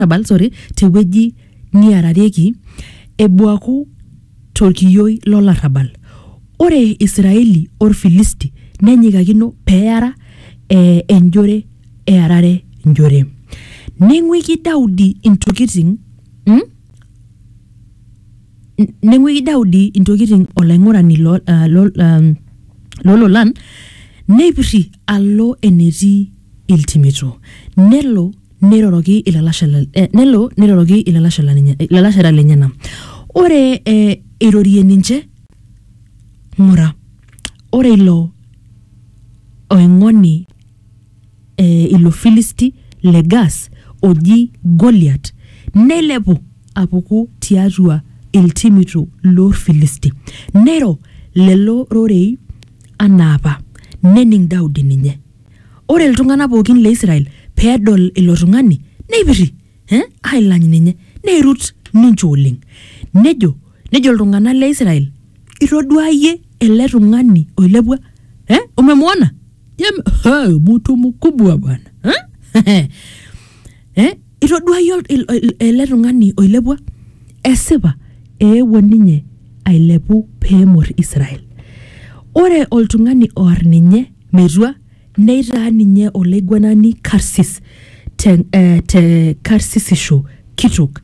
olarrabal sorry tewueji niararieki ebuaku torkiyioi lolarrabal ore israeli orfilisti nenyikakino peara eh, enjore earare njore neng'uiki daudi intokiting mm? N- neng'uiki daudi intokiting olaing'urani lo, uh, lo, um, lololan neipirri alo enetii iltimito nelo Neiroroki ilalashera, eh, nelo neiroroki ilalashera lenye, ilalashera lenyena. Ore eh, eirorie ninche, ng'ura, ore ilo oing'oni eh, ilo Filisti le Gas oji Goliat neilepu apuku tiatua iltimito loorfilisti. Neiro lelo rorei anaa apa, nening Daudi ninye. Ore iltung'ana pookin le Israel pee edol ilo tung'ani neipirri eh, ailany ninye neirut ninche oleng. Nejo, nejo iltung'ana le Israel, Itoduaa iyie ele tung'ani oilepua? Eh, umemuona? Je, hey, mtu mkubwa bwana eh? eh, itoduaa iyie ol- il- il- ele tung'ani oilepua? Esipa eewuo ninye ailepu pee emor Israel. Ore oltung'ani oar ninye Metua, neitaa ninye olaiguanani karsis te, eh, te karsisisho kitok,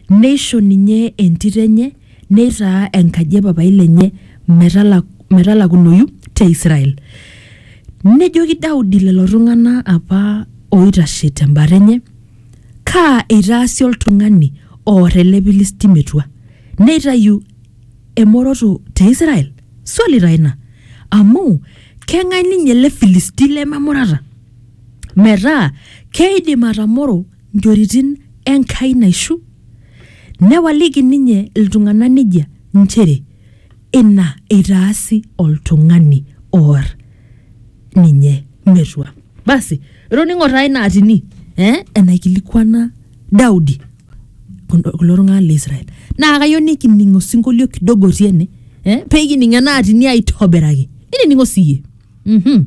neisho ninye entito enye neitaa enkaji e papai lenye metala, metalakunoyu te Israel. Nejoki Daudi lelo tung'ana apa ooitashe tembata enye, Kaa eitaasi oltung'ani oor ele Pilisti metua? Neitayu emoroto te Israel? Swali taa ina. Amu keng'ae ninye ele Filisti lememurata? Metaa keidim atamoro nchoritin Enkai naishu? Newaliki ninye iltung'ana nejia nchere ina eitaasi oltung'ani oar ninye metua. Basi, itoning'o taa ina atini eh, enaikilikuana Daudi. kulo kulo tung'anak le Israel naa kayieu nikining osinkolio kidogo otii ene eh, pekining ena atini aitobiraki ninining'o siyie mhm.